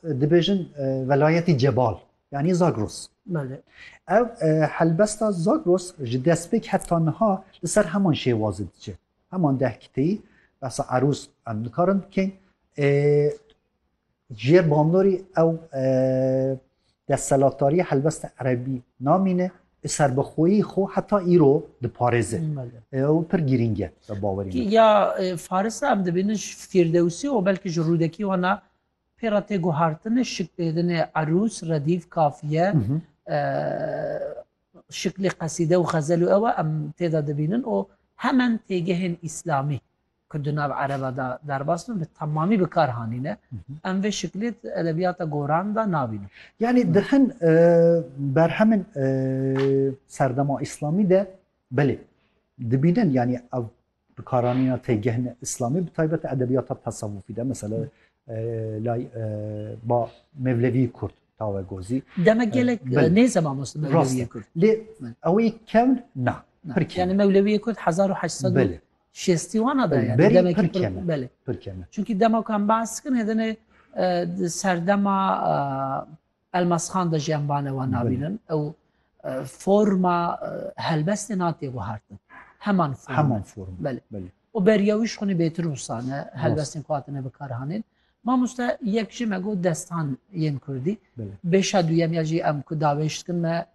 Dibêjin velayetî Cebal yanî Zagros. Ev helbesta Zagros ji destpêk heta niha li ser heman şêwazê diçe. Heman deh kiteyî behsa erûz em nikarin bikên. Ji yê bandorî ew destselatdarî helbesta erebî namîne û serbixweyî xwe heta îro diparêze. Ew pir girîng e bi bawerî min. Ya faris re em dibînin ji fîrdewsî û belkî ji rûdekî wana Pêra tê guhartine şik têdine erûs, redîf, kafiye, şiklê qesîde û xezel û ewa em têda dibînin û hemen têgehên îslamî ku di nav ereba da derbas bin bi temamî bi kar hanîne. Em vê şiklê di edebiyata goran da nabînin. Yanî di hin berhemên serdema îslamî de belê dibînin yanî ev Bi karanîna têgihine îslamî bi taybet edebiyata tesewufî de mesela lay ba mevlevî kurd tawe gozî. Demek gelek nêze mamoste mevlevî kurd. Lê ew ê kevn na. Yani mevlevî kurd 1800 şêstî wana da yani demek pir keme. Belê. Pir keme. Çünkü dema kan bahs kin hedene serdema Elmasxan de jî em vane wan nabînin ew forma helbestê natê guhertin. Heman form. Heman form. Belê. Belê. O beriya wî ji xwînê bêtir husane helbestên ku hatine bikarhanên. Mamoste yek jî me got destan yên Kurdî. Bêşa duyem ya jî em ku davêj dikin me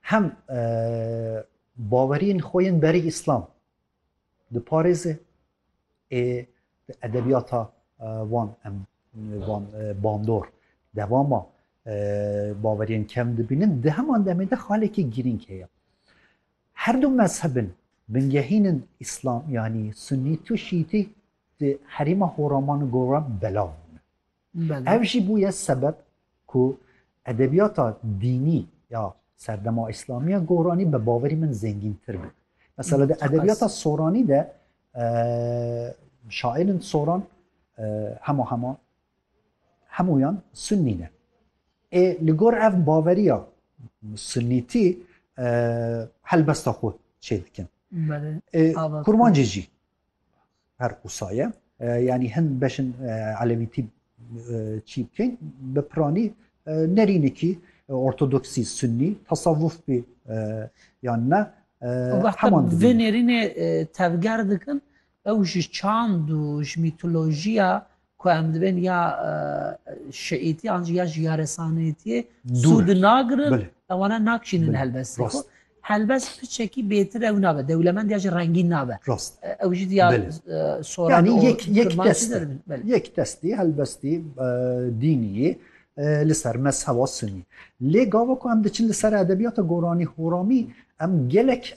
Hem baweriyên xwe yên berî îslam diparêze ê di edebiyata wan em van bandor dewama baweriyên kem dibînin di heman demê de xalekî girîng heye. Her du mezhebin bingehînin îslam yanî sunît û şîîtî di herêma Horaman û Goran belav bûne. Ev jî bûye sebeb ku edebiyata dînî ya serdema îslamiya goranî bi baverî min zengîntir be. Mesela di edebiyata soranî de şairên soran hema hema hemûyan sunnî ne. Ê li gor ev baveriya sunnîtî helbesta xwe çê dikin. Kurmancê jî Her qisa ye. Yanî hin beşin Elemîtî çî bikin bi piranî nerînikî ortodoksî sunnî tasavvuf bî yan ne heman vê nêrînê tevger dikin ew ji çand û ji mîtolojiya Ku em dibên ya şiîtî an jî ya jî ya resanîtîyê sûd nagirin ewana nakişînin helbestê xwe. Helbest piçekî bêtir ew nabe dewlemend ya jî rengîn nabe. Rast ew jî diya soran yek destî helbestî dînîyê li ser mezheba sunî. Lê gava ku em diçin li ser edebiyata goranî horamî em gelek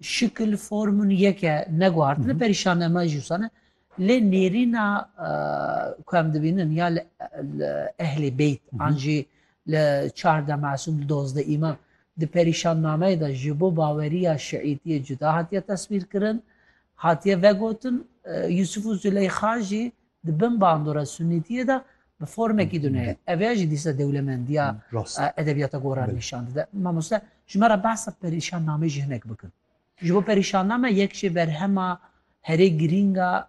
Şikil, formûn yek e, ne guhartin e, perîşan e, me jî wisa ne. Lê nêrîna ku em dibînin ya li Ehlê Beyt an jî li Çardeh Mesûm, li Dozdeh Îmam di perîşannameyê de ji bo baweriya şiîtiyê cuda hatiye teswîrkirin, hatiye vegotin Yûsif û Zileyxa jî Di bin bandora sunnîtiyê de bi formekî dune ye. Ev ya jî dîsa dewlemendiya edebiyata goran nîşan dide. Mamoste ji me re behsa perîşannameyê jî hinek bikin. Ji bo perîşanname yek ji berhema herê girîng a